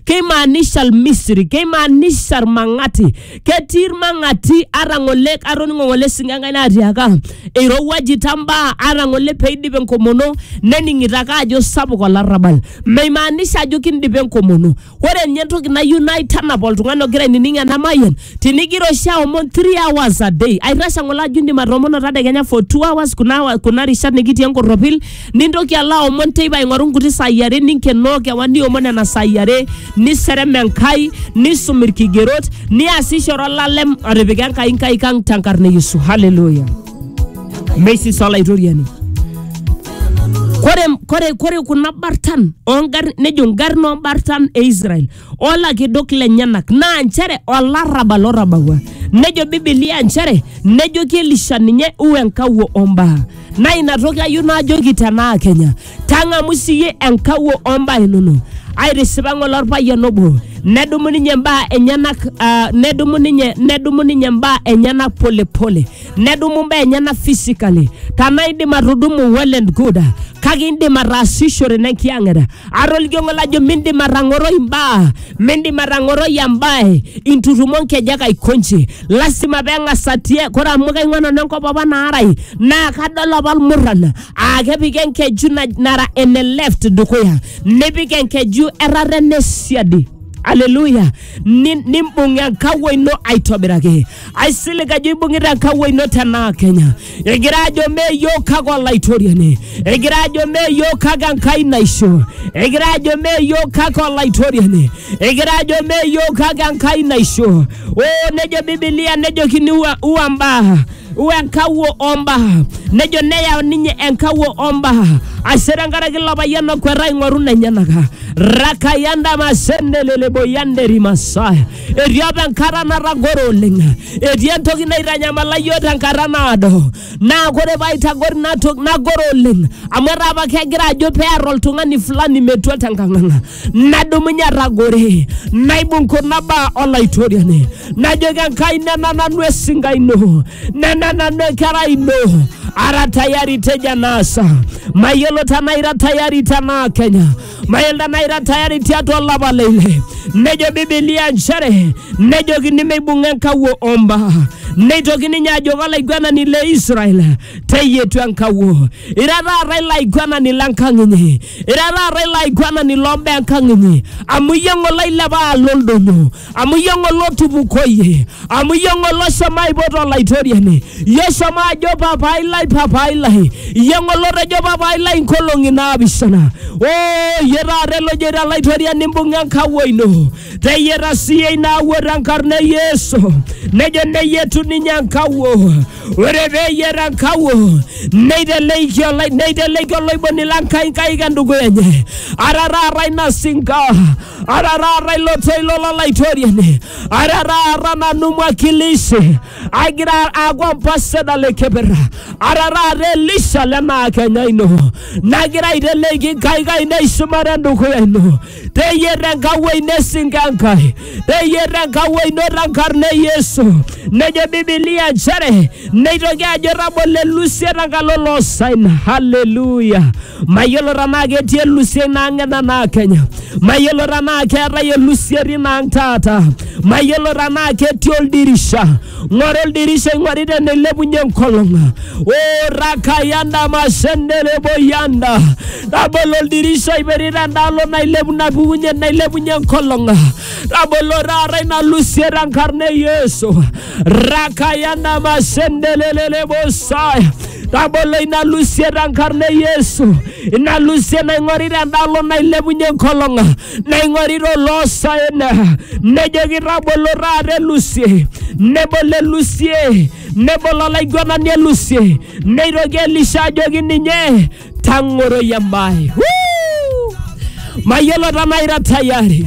keimaanisha Misri, keimaanisha Irmang'ati. Ketii Irmang'ati ara ng'ole atoning'o ng'ole esingo Enkai naatiaka eirowuajita mbaa ara ng'ole peidip enkomono nening'ito ake ajo sapuk olarrabal. Meimaanisha ajo kindipa enkomono. Ore ninye entoki nayieu naitanap oltung'ani ogira ainining ena mayian, tinigira oshi aomon three hours a day, aitashe ng'ole ajo indim atoomono tadekenya for two hours kuna rishat nikitii enkorropil nintoki alo aomon teipa aing'oru nkuti saai are ninkenoo kewan niomon nena saai are niserem enkai nisum irkigerot niasishore olalem otipika enkai nkaik ang tenkarna e yesu haleluya mesis olaitoriani kore, kore, kore kuna bartan ongarrin nejo ngarrin ombartan e israel olakidok lenyenak naa nchere olarrabal otabawua nejo bibilia nchere nejoki elisha ninye u enkawuo ombaa naa ina toki ayieu naajoki tenaa kenya tang'amu siyie enkawuo ombaa inono aitisipa ng'ole orpayian obo nedumu ninye mbaa enyenak uh, nedumu ninye nedumu ninye mbaa enyenak polepole pole. nedumu mbaa enyena physically tanaa indim atudumu well and good kake indim ataasishore nenkiyang'eta ata olkiong'o lajo mindim atang'oroi imbaa mindim atang'oroi embae intutumo nkejek aikonji lasima peng'as atie kore amu kaing'ua nanu enkop apa naarai naa kadol apa ilmurran aa kepiki enkeju naj- nara ene left dukuya nipik enkeju errata ene siadi aleluya Ni- nimbung enkawuo ino aitobiraki aisilig ajo ibung'ita nkawuo ino tenaa kenya egira ajo mee yiok kake olaitoriani egira ajo mee yiok kake enkai naisho egira ajo mee yiok kake olaitoriani egira ajo mee yiok kake enkai naisho oo nejo bibilia nejokini ua, ua mbaa ua enkawuo ombaa nejo neyau ninye enkawuo ombaa ashe tenkaraki ilo payian okweta aing'oru nenyenaka rakayandamasendeleeboyanderimasa Etii apa enkata natagore oleng, etii entoki naitanyamala iyiook tenkata naado, naa kore pee aitagor ina toki nagor oleng amu etaa apa kegira ajo pee ear oltung'ani fulani metua tenkang ang. Nadumunye atagore, naibung kuna baa Olaitoriani, najoki Enkai nena nanu esinka ino, nena nanu enkerai ino, ara tayari tejo enaasa. Mayiolo tenaa ira tayari tenaa kenya mailda naira tayari tiatua olapa le ile nejo bibilia nchere nejokini meibung'a enkawuo omba neitoki ninye ajoki olaiguanani le israel teyietu enkawuo ira taata ilo aiguanani lenkang inyi ira taata ilo aiguanani lombaa enkang inyi amu iyie ng'ole oilepa alo oldonyo amu iyie ng'ole otupukoyie amu iyie ng'ole oshomo aipot olaitoriani iyie oshomo ajo papai lai papai lai iyie ng'ole otejo papai lai nkolong'i naapishana o iyie taata elojoito olaitoriani imbung'a enkawuo ino teyie tasiyie ina awuo tenkarna e yesu nejo neyietu ninye enkawuo ore peyiet enkawuo neiteleiki olai- neiteleiki oloiboni lenkai nkaik endukuya enye ara taata ina sinka araraara ilo toilo lolaitoriani araraara nanu mwakilishi agira aaku ambasada le keper araraara elisha lenaa kenya ino nagira aiteleki nkaik ainei shumata endukuya ino teyier enkawuo ino esinka enkai teyier enkawuo ino tenkarna e yesu nejo bibilia nchere neitoki ajo tabolo elusie tenkalo loosaina haleluya Mayiolo tenaa ketii elusiai naang'ena naa Kenya. Mayiolo tenaa keetae elusieri naang' taata. Mayiolo tenaa ketii oldirisha. Ng'oru oldirisha ing'ori teneilepunye enkolong'. Oo rakayanda mashendere boyanda. Tabolo oldirisha oiperito endaalo nailepu napukunye nailepunye enkolong'. Tabolo taata ina lusiet tenkarna e Yesu. rakayana masendelelele bosaya tabolo ina lusie tenkarna e yesu ina lusie naing'orita endalo nailepunye enkolong naing'orita oloosaen nejoki tabolo taata elusie nebolo elusie nebolo olaiguanani elusie neitoki elisha ajoki ninye tang'oroi embae Woo! mayiolo tenaa ira tayari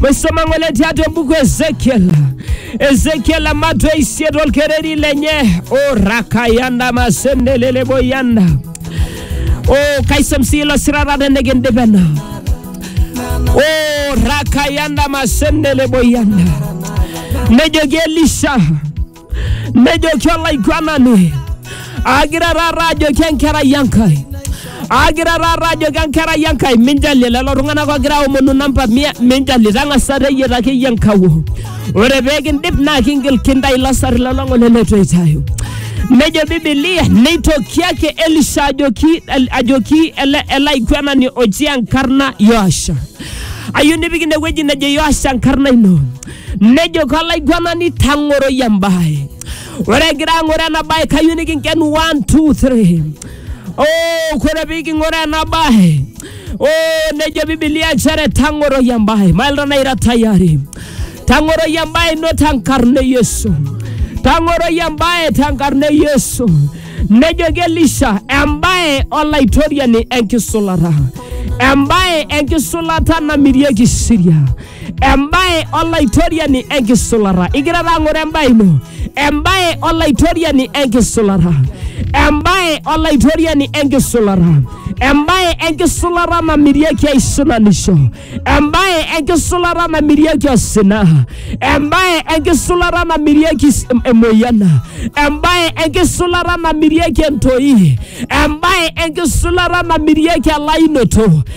maisoma ng'ole tiatua embuku ezekiel ezekiel amatwa isiet olkereri lenye o rakayanda masendeleleboyanda o kaisom sii ilo sirata tenikindip ena o rakayanda masendeleboyanda nejoki elisha nejoki olaiguanani agira taata ajoki enkerai enkai agira taata ajoki enkerai enkai minjalie lelo tung'anak ogira aomonu namba mia minjalie tang'asa teyieta akeyie enkawo ore peekindip naa kingil kintai ilo sarri lolong'ole letu eitayu nejo bibilia neitoki ake elisha ajoki, ajoki ele, ele aiguanani oji enkarna yoasha ayieu nipik inewueji nejo yoasha enkarna ino nejo kolaiguanani tang'oroi embae ore egira ang'ore ena bae kayieu nikinken 1 2 3 oh, kore piking'ore ena bae oh, nejo bibilia nchere tang'oroi embae mailta naira tayari tang'oroi embae ino tenkarna e yesu tang'oroi embae tenkarna e yesu nejoki elisha embae olaitoriani enkisulata embae enkisulata namirieki siria embae olaitoriani enkisulata igira taa ng'oro embae ino embae olaitoriani enkisulata embae olaitoriani enkisulata embae enkisulata namirieki aisulanisho embae enkisulata namirieki osina embae enkisulata namirieki s- emoyian embae enkisulata namirieki entoi embae enkisulata namirieki elainoto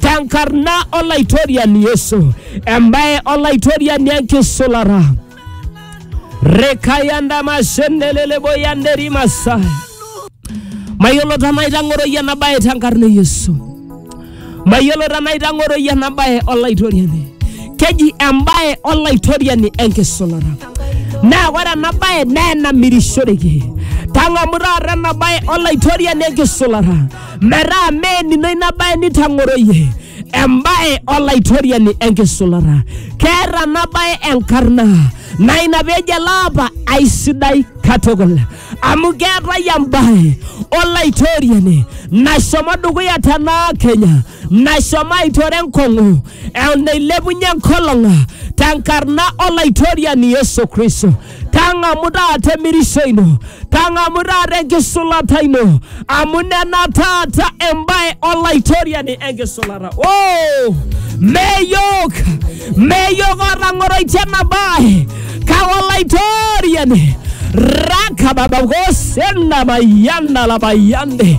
tenkarna olaitoriani Yesu, embaye olaitoriani enkisulara. Rekayanda mashendelele boyanderi masai. Mayiolo tenaa itang'oroyie ena baye tenkarna e Yesu. Mayiolo tenaa itang'oroyie ena baye olaitoriani. Keji embaye olaitoriani enkisulara. Naa ore ena baye naa enamirishoreki. Tang'amu taata ena baye olaitoriani enkisulara. metaa meenino ina bae nitang'oroyie embae olaitoriani enkisulata keeta ena bae enkarna naa ina peejo ele apa aisidai katukul amu keetae embae olaitoriani nashomo dukuya tenaa kenya nashomo aitore enkong'u eon neilepunye enkolong tenkarna olaitoriani Yesu Kristo. Tang'amu taata emirisho ino, tang'amu taata enkisulata ino, amu nena taata embae olaitoriani enkisulata. Oh! Meyok, meyok otang'oroitie ena bae, kake olaitoriani rakababakosena mayiana labayande